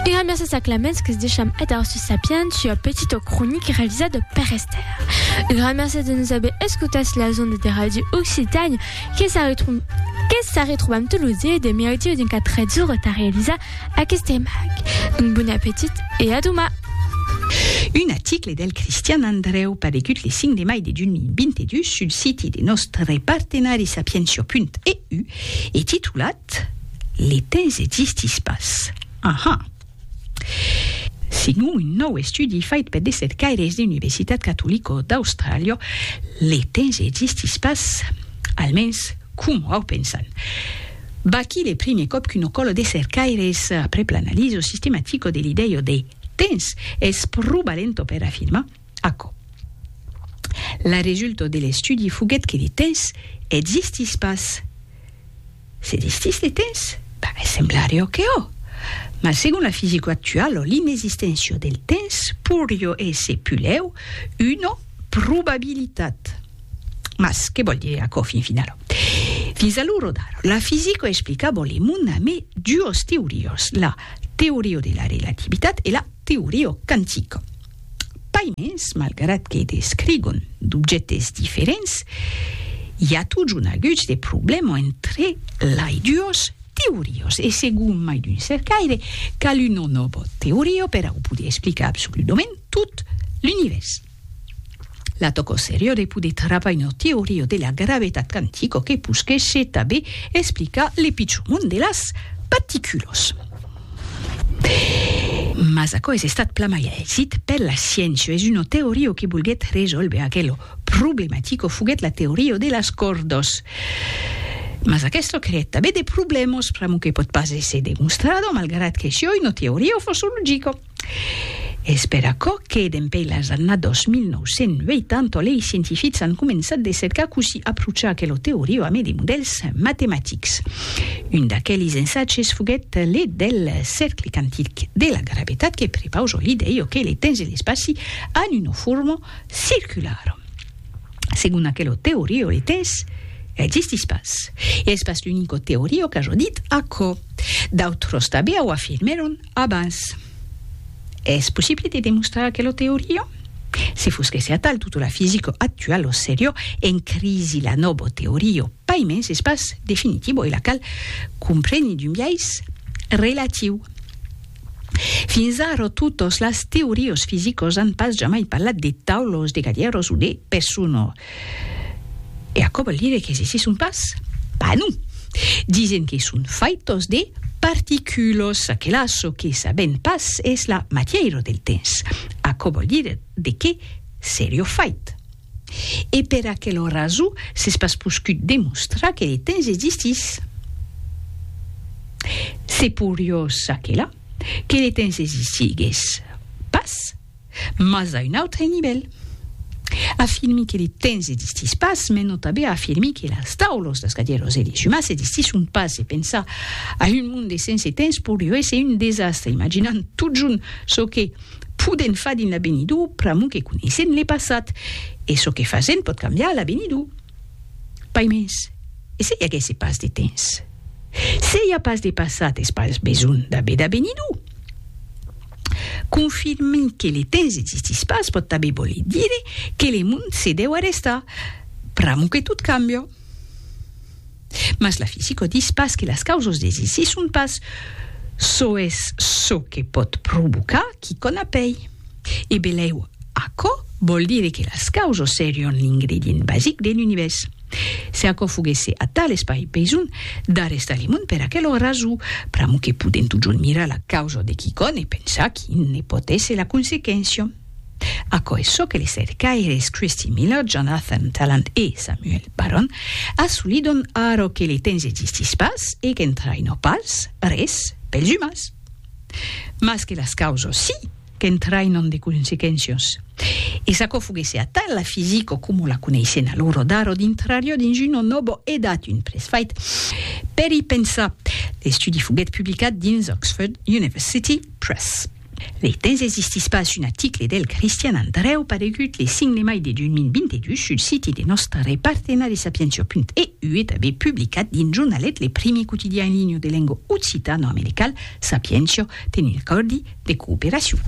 Era mèrses a Clemens que's deisham èdar sus Sapiens, sua petita cronica revisada per Esther. Era mèrses de nos aver escotats las ondes de Ràdio Occitània, que s'a retrobam tot lo dia de mercredi a 24 ora tà realizar aqueste emag. Un bon apetit e a doman! Un aticle del Cristian Andrèu paregut le 5 de mai de 2022 sul siti de nòstre partenari Sapientia.eu e titulat. Cat, le temps existís pas. Aha! Segon un nòu estudi fait per de cercaires de Universitat Catolico d'Austràlia, le temps existís pas, almens coma au pensan. Vaquí le primier còp qu'una còla de cercaires, aprèp l'analiso sistematico de l'idèia de temps, es probalent per afirmar, Aquò. La resulta de l'estudi foguèt que de tens existís pas. S'existís de tens? Ben, semblariá que ò. Mas segon la fisica actuala, l'inexisténcia del tens pourriá èsser pulèu una probabilitat. Mas que vòl dire aquò fin finala? Fins a l'ora d'ara, la fisica explicava le mond amé duas teorias, la teoria de la relativitat e la teoria quantica. Pas mens, malgrat que descrigon d'objèctes diferents, i a totjorn aguts de problèmas entre lai duos teorios e segon mai d'un cercaire, cal una nòva teoria per au poder explicar absoludament tot l'Univèrs. La tòca seriá de poder travar una teoria de la gravetat quantica que posquèsse tanben explicar le pichon mond de las particulas. Mas aquò es estat plan mai aisit per la sciéncia, es una teoria que volguèt resòlver aquela problematica foguèt la teoria de las còrdas. Mas aquesta creèt tanben de problèmas, pr'amor que pòt pas èsser demonstrada, malgrat que siá una teoria fòrça logica. Es per aquò que, dempèi las annadas 1980, lei scientifics an començat de cercar cossí aprochar aquela teoria amé de modèls matematics. Un d'aquelis ensatges foguèt le del Cercle Quantic de la Gravetat que prepausa l'idèia que le temps e l'espaci an una forma circulara. Segon aquela teoria le temps existís pas. E es pas l'unica teoria qu'aja dit aquò. D'autras tanben au afirmèron abans. Es possible de demostrar aquela teoria? Se fos que se atal tota la fisica actuala o seriò en crisi la nòva teoria pas mens es pas definitiva e la cal compreni d'un biais relatiu. Fins ara totas las teorias fisicas an pas jamai parlat de taulas, de galèras o de personas. E aquò vòl dire que se se son pas? Pas non! Disen que son faitos de particulos, aquela çò que sabèm pas es la matièira del temps. Aquò vòl dire de qué serió fait. E per aquela raso s'es pas poscut demostrar que le temps existís. Se porió çaquelà que le temps existigues pas. mas a un autre nivèl. Afirmi que le temps existís pas me nòta be a afirmir que las taulos, las cadieros e les umans existisson pas e pensar a un monde sense temps poirió èsser un desastre imaginant totjorn çò que podèn far dins l'avenidur pr'amor que coneissèn le passat e çò que fasèn pòt cambiar l'avenidur. Pas mens, e se i aguèsse pas de temps? Se i a pas de passat es pas besonh d'aver d'avenidur. Confirmi que le temps existís pas pòt tanben voler dire que le mond se deu arrestar pr'amo que tot cambia. Mas la fisica dis pas que las causas desisisson pas, çò es çò que pòt provocar quicòm a pei. E belèu, aquò vòl dire que las causas serián l'ingredient basic de l'univèrs. Se aquò foguèsse atal es pas besonh d'arrestar li mond per aquel raso, pr'amor que podem totjorn mirar la causa de quicòm e pensar quin ne pòt èsser la consequéncia. Aquò es çò que les cercaires Christy Miller, Jonathan Tallant e Samuel Barron assolidon ara que le temps existís pas e qu'entraina pas res pels umans. Mas que las causas sí! qu'entrainon de consequéncias. E s'aquò foguèsse atal, la fisica coma la coneissèn alora d'ara dintrariá dins una nòva edat, un presfait per i pensar. L'estudi foguèt publicat dins Oxford University Press. Lei temps existís pas un aticle del Cristian Andrèu paregut le 5 de mai de 2022 sul siti de nòstre partenari Sapientia.e. Uet aver publicat dins Jornalet le primier quotidian en linha de lenga occitano-americal, Sapientia, tenent acòrdi de cooperacion.